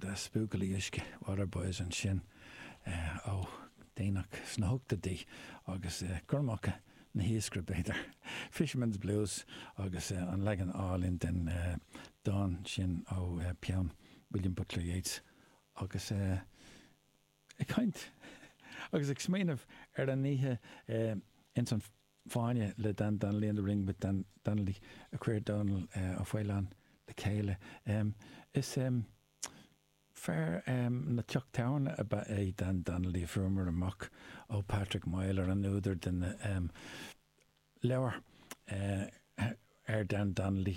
Na Buachaillí Uisce, Waterboys, ansin ó déanach sna hochtóidí agus gormacha an iascaire, b'fhéidir. Fisherman's Blues agus an leagan álainn den dán sin ó pheann William Butler Yeats agus Ag caint agus ag smaoineamh ar an oíche ins an bhFáinne le Dan Donnelly In the Ring with Dan Donnelly a chuir Donal Fallon le chéile. Is fear na dteach tábhairne ab ea é Dan Donnelly a fuaireamar amach ó Patrick Myler an údar den leabhar ar Dan Donnelly.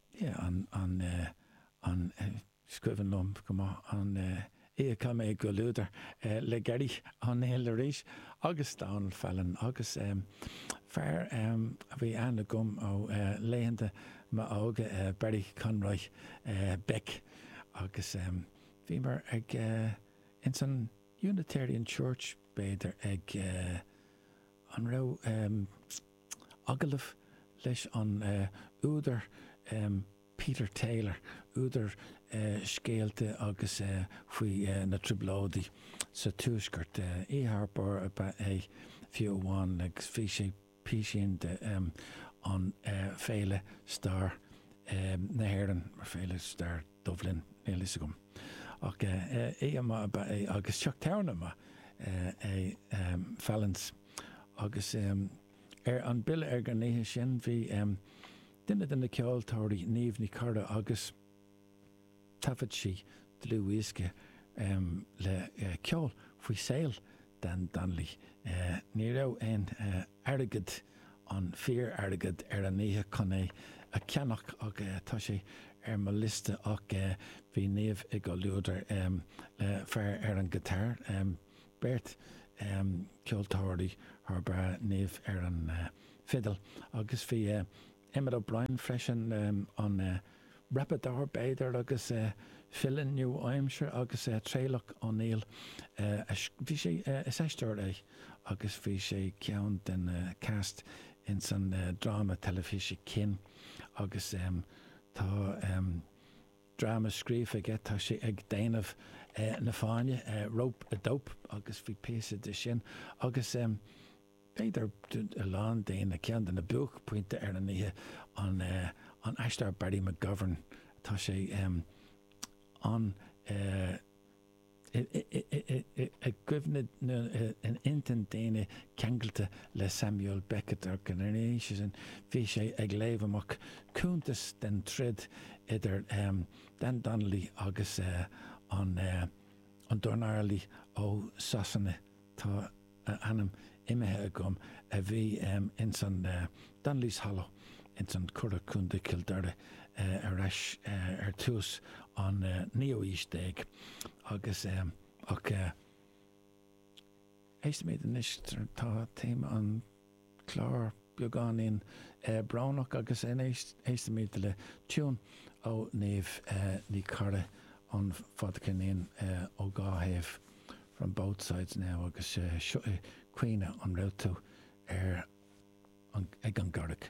yeah an an eh an eh is cuimhin liom go maith an eh yeah chaith mé i gcomhluadar eh le Terry O'Neill arís agus Donal Fallon agus em fear em a bhí ann agam ó eh laethanta m'óige eh Barry Conroy eh Beck agus em bhíomar ag eh ins an Unitarian Church b'fhéidir ag eh an raibh em Agallamh leis an údar Peter Taylor, údar scéalta agus faoi na Trioblóidí sa Tuaisceart. Ar fheabhas ab ea é fiú amháin agus bhí sé písín de an Féile Stair na hÉireann, Féile Stair Dublin, níl fhios agam. Ach oíche mhaith ab ea é agus teach tábhairne maith é Fallon's. Agus ar an bill ar an oíche sin bhí duine de na ceoltóirí, Niamh Ní Charra, agus thaifead sí dlúthdhiosca le ceol faoi saol Dan Donnelly. Ní raibh aon airgead, an fíor-airgead, ar an oíche chun é a cheannach ach tá sé ar mo liosta ach bhí Niamh i gcomhluadar le fear ar an ngiotár, beirt cheoltóirí thar barr, Niamh ar an bhfidil agus bhí Emmet O'Brien freisin, an rapálaí b'fhéidir agus file nua-aimseartha agus Traolach Ó Néill, bhí sé, is aisteoir é agus bhí sé ceann de na cast ins an dráma teilifíse Kin agus tá. dráma scríofa aige, tá sé ag déanamh na fáinne, Rope-a-Dope, agus bhí píosa de sin agus b'fhéidir do a lán daoine, ceann de na buaicphointí ar an oíche an an aisteoir Barry McGovern, tá sé an. i gcuimhne nó in intinn daoine ceangailte le Samuel Beckett, agus ina dhiaidh sin bhí sé ag léamh amach cuntas den troid idir Dan Donnelly agus an dornálaí ó Sasana. tá a ainm imithe agam, a bhí ins an Donnelly's Hollow ins an Curragh, Contae Cill Dara ar ais ar tús an naoú aois déag agus ach ais mé anois tá téama an clár beagáinín brónach agus éistimid le tiún ó Niamh Ní Charra, An fadcheirnín Ón Dá Thaobh, From Both Sides Now agus seo é Caoineadh an Raibh Tú a ag an gCarraig?